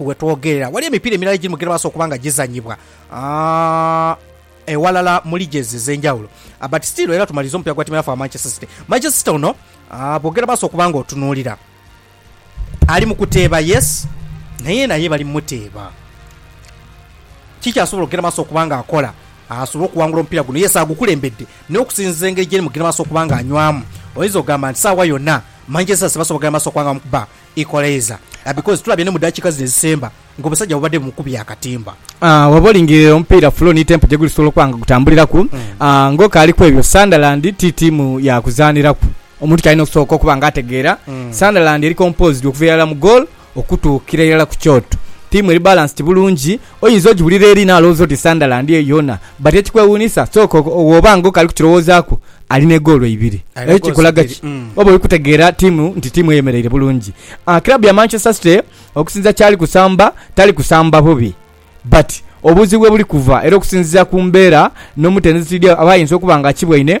we twogerera waliyo emipiira emirala egiri mu gye baasa okuba nga gizannyibwa ewalala mu liges ez'enjawulo but still era tumaliriza omupira gwa tiimu yaffe wa Manchester City. Manchester City ono bwogera baasa okuba nga otunuulira ali mu kuteeba yes naye naye bali mu muteeba kikyasobola okugenda maaso okuba nga akola asobole okuwangula omupiira guno yes agukulembedde naye okusinziza engeri gyeri mugenda maaso okuba nga anywamu oyinza okugamba nti saawa yonna Manchester City basobola okugenda maaso okuba nga bamukuba Equalizer because tulabye ni mu dakiika zino ezisemba nga omusajja bubadde bumukubye akatimba. Bwoba olingirile omupiira flow ni tempo gye gulisobola okuba nga gutambuliraku, ng'okaali kwebyo, Sunderland ti ttiimu ya kuzaaniraku. Omuntu ky'alina okusooka okuba nga ategeera, Sunderland eri composed okuva irala mu goal okutuukira irala ku kyoto. Ttiimu eri balanced bulungi Oyinza ogiwulira eri n'alowooza oti Sunderland eyo yoona. But ekikwewuunisa, sooka wooba nga okali kukirowoozaaku, ali n'egoolo ibiri. Eyo kikulaga ki? Oba oli kutegeera ttiimu nti ttiimu eyemereire bulungi. Club ya Manchester City okusinziira kyali kusamba, tali kusamba bubi. But obuzibu webuli kuva era okusinziira ku mbeera n'omutendesi Diao aba ayinza okuba nga akibwaine,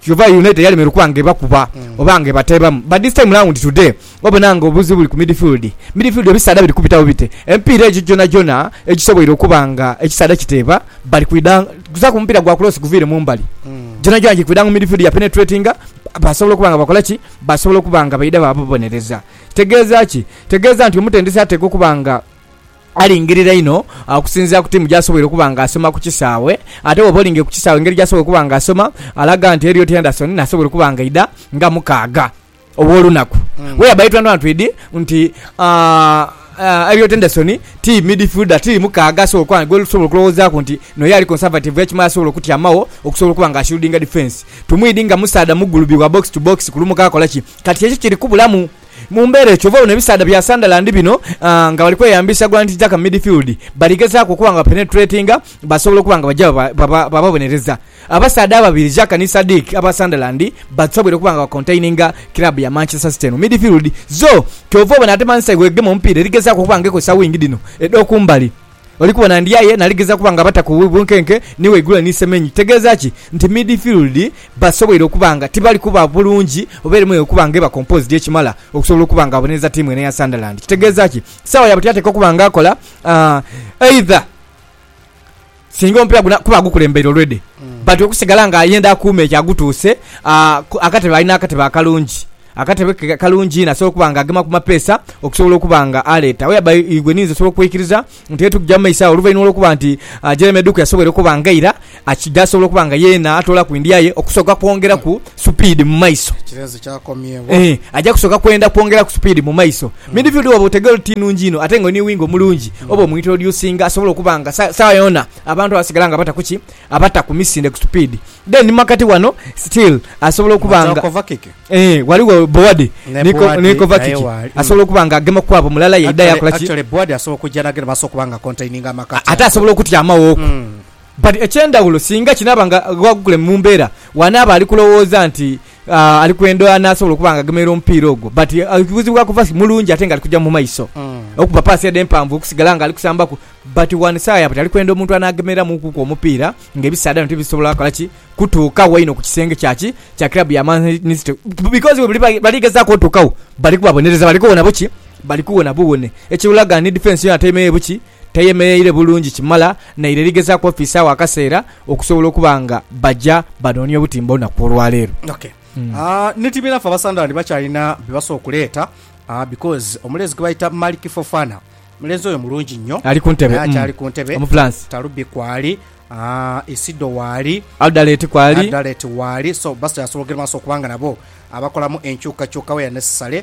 Kyova United yalemerwa okuba nga ebakuba oba nga ebateebamu but this time round today obona nga obuzibu buli ku midfield. Midfield ebisaadha biri kubitawo bite? Emipiira egyo gyonagyona egisoboire okuba nga ekisaadha kiteeba bali kwidha kuzaku mupiira gwa kulosi guviire mu mbali. Gyonagyona giri kwidha mu midfield yapenetratinga basobola okuba nga bakola ki? Basobola okuba nga baidha baababonereza. Kitegeeza ki? Kitegeeza nti omutendesi ateekwa okuba nga. Alingirira inho okusinziira ku tiimu gy'asoboire okuba nga asoma ku kisaawe. Ate bw'oba olingiire ku kisaawe engeri gy'asobola okuba nga asoma, alaga nti Elliot Henderson nasobola okuba nga aidha nga mukaaga ow'olunaku. Where by twanwantwid nti Elliot Henderson ti midfielder, ti mukaaga asobola okuba gwesobola okulowoozaaku nti n'oyo ali conservative ekimala asobola okutyamagho okusobola okuba nga ashieldinga defence. Tumwidi nga musaadha mugulubi wa box to box kulumuka akola ki? Kati kyekyo kiri kubulamu. Mu mbeera eyo kyova obona ebisaadha bya Sunderland bino nga bali kweyambisa gwanti Xhaka mu midfield, bali gezaaku okuba nga bapenetratinga basobola okuba nga baja bababonereza. Abasaadha ababiri Xhaka ni Sadiq aba Sunderland basobweire okuba nga bakontaininga kiraabu ya Manchester City eno mu midfield. So kyova obona ate Man City bwegema omupiira eri gezaaku okuba nga ekozesa wingi dhino edhokumbali. Oli kubona Ndiaye naligeza kuba nga bata ku bunkenke ni waigule ni Semenyi kitegeeza ki? Nti midfield basoboire okuba nga tibali kuba bulungi oba eremweire okuba nga eba composed ekimala okusobola okuba nga abonereza tiimu eno eya Sunderland. Kitegeeza ki? Saawa yabuti atekwa okuba nga akola either singa omupiira guna kuba agukulembeire already but okusigala nga ayenda akuume ekyo agutuuse akatebe ali n'akatebe akalungi. Akatebe ke kalungi inho asobola okuba nga agema ku mapeesa okusobola okuba nga aleeta whereby igwe ninze osobola okweikiriza nti eyo tugija mu maiso agho oluvainhuma olw'okuba nti Jeremy Eduku yasoboire okuba nga eira akidha asobola okuba nga yeena atoolaku endya ye okusooka kwongeraku supiidi mu maiso. Ekireezo kyakomyebwa. Eeh, aja kusooka kwenda kwongeraku supiidi mu maiso. Midfield bw'oba otegeera oti ti nungi inho ate nga oli ni winger omulungi, oba omuintroducinga asobola okuba nga sa, saawa yoona abantu abasigala nga bataku ki? Abata ku misinde ku supiidi dhe ni makati wano still asobola okuba nga. Matooko vakiki. Eeh ghaligho Boadi ni Kovakiki asobola okuba nga agema kwabo mulala yaidha yakola ki. Actually Boadi asobola okujja nagenda basobola okuba nga acontaininga amakati ago. Ate asobola okutyamaghoku. But ekyendhawulo singa kinaaba nga Ghagukule mu mbeera wanaaba ali kulowooza nti ali kwenda anasobola okuba nga agemeire omupiira ogwo but ekibuzibu akuva mulungi ate nga ali kuja mumaiso mm. okuba paasi ede empanvu okusigala nga ali kusambaku but one side but ali kwenda omuntu anagemereramukuku omupiira nga ebisaadha bino tibisobola kola ki kutuukawo ino ku kisenge kyaki kya club ya Man City because buli bali gezaako otuukawo bali kubabonereza bali kuwona buki bali kuwona buwone ekiwulaga ni defense yona taimeyo buki teyemeleire bulungi kimala naire eri gezaaku ofiisaawo akaseera okusobola okuba nga baja banoonia obutimba olunaku olwaleero. Ok ni tiimu enhafu Abasunderland bakyalina bye basobola okuleeta because omulenzi gwe bayita Malik Fofana, omulenzi oyo mulungi nnyo Ali ku ntebe, naye mm, akyali ku ntebe. Omufulansi. Talubi kwali, Isido waali, Aldalet kwali. Aldalet waali so bakyasobola okugenda mu maaso okubanga nabo abakolamu enkyukakyuka where necessary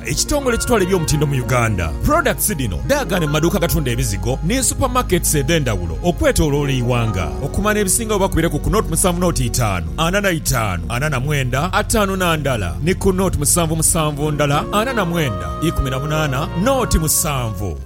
Ekitongole ekitwala eby'omutindo mu Uganda, products dhino dhaagaana mu maduuka agatunda ebizigo ni super markets edhendhawulo okwetoloola eighanga. Okumanya ebisingawo oba kubireku ku nought musanvu nought itaanu ana na itaanu ana na mwenda ataanu na ndala ni ku nought musanvu musanvu ndala ana na mwenda ikumi na munaana nought musanvu.